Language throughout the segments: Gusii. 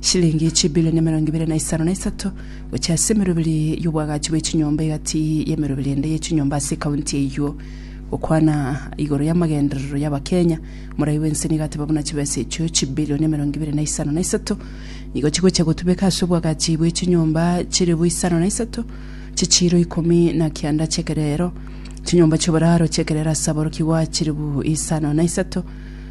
shilingi chibilioni emerongo ibere na isano na isato gochia ase emeroberi y'obwagachi bwe chinyomba egati y'emeroberi ende ye chinyomba ase ekaunti eyio. Gokwana igoro y'amagenderero y'Abakenya, morai bwense nigo ateba buna chibesa echio chibilioni emerongo ibere na isano na isato nigo chigochia gotubeka ase obwagachi bwe chinyomba chilifu isano na isato chichiiro ikomi na kianda chi'ekerero, chinyomba chi'oboraro chi'ekerero ase aborokigwa chilifu isano na isato,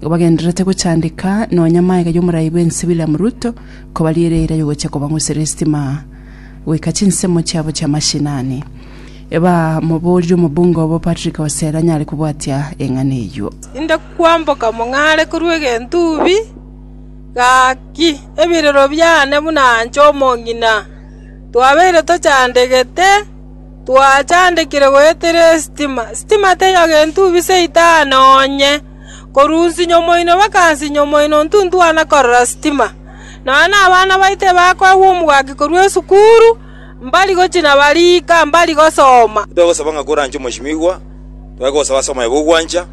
Igo bagendererete gochandeka nonya amaega y'omorai bw'ense William Ruto kobariera eira yogochia kobang'usera esitima goika chinsemo chiabo chi'amashinani. Ebamoborire omobunge obo Patrick Osera nyare kobwatia eng'ana eyio. Inde kwamboka mong'are korwa egentubi, Gaki ebirero biane buna anche omong'ina. Twabeire tochandegete, Twachandekire goetera esitima, Sitima teiyo gentubi seita noonye. Korwa onsinyo omoino mpaka nsinyo omoino ntintwana korora sitima. Nonya nabana baito ebakoegwa omogaki korwa esukuru, mbari gochia na barika, mbari gosoma. Titwegosaba ng'a koranche omosimigwa, twegosaba ase omoyo bw'ogwancha,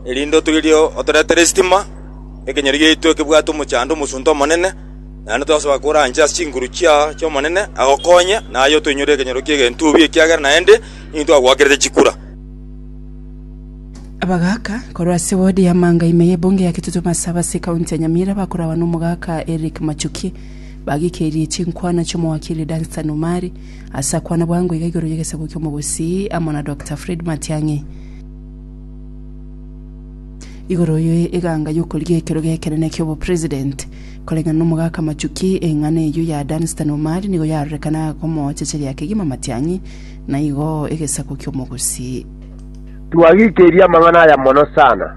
erinde otoirie otoretere esitima, ekenyoro giaito ekebwate omochando omosunte Omonene. Naende twegosaba koranche ase chinguru chia chi'Omonene, agokonye, na aye otoinyore ekenyoro ki'egentubi, ekiagera naende intwe agwakerete chikura. Abagaaka korwa ase wodi ya Manga ime y'ebunge ya Kitutu Masaba ase ekaunti ya Nyamira bakoragwa n'omogaaka Eric Machuki bagikeirie chinkwana chi'omowakili Dunstan Omari ase akwana bwango iga igoro y'egesaku ki'omogusii amo na Doctor Fred Matiang'i igoro ye eganga y'okorigia ekero gekenene ki'obopresident. Koreng'ana n'omogaaka Machuki, eng'ana eyio ya Dunstan Omari nigo yarorekana akomochecheria kegima Matiang'i Na igo egesaku ki'omogusi. Twagikeirie amang'ana aya mono sana.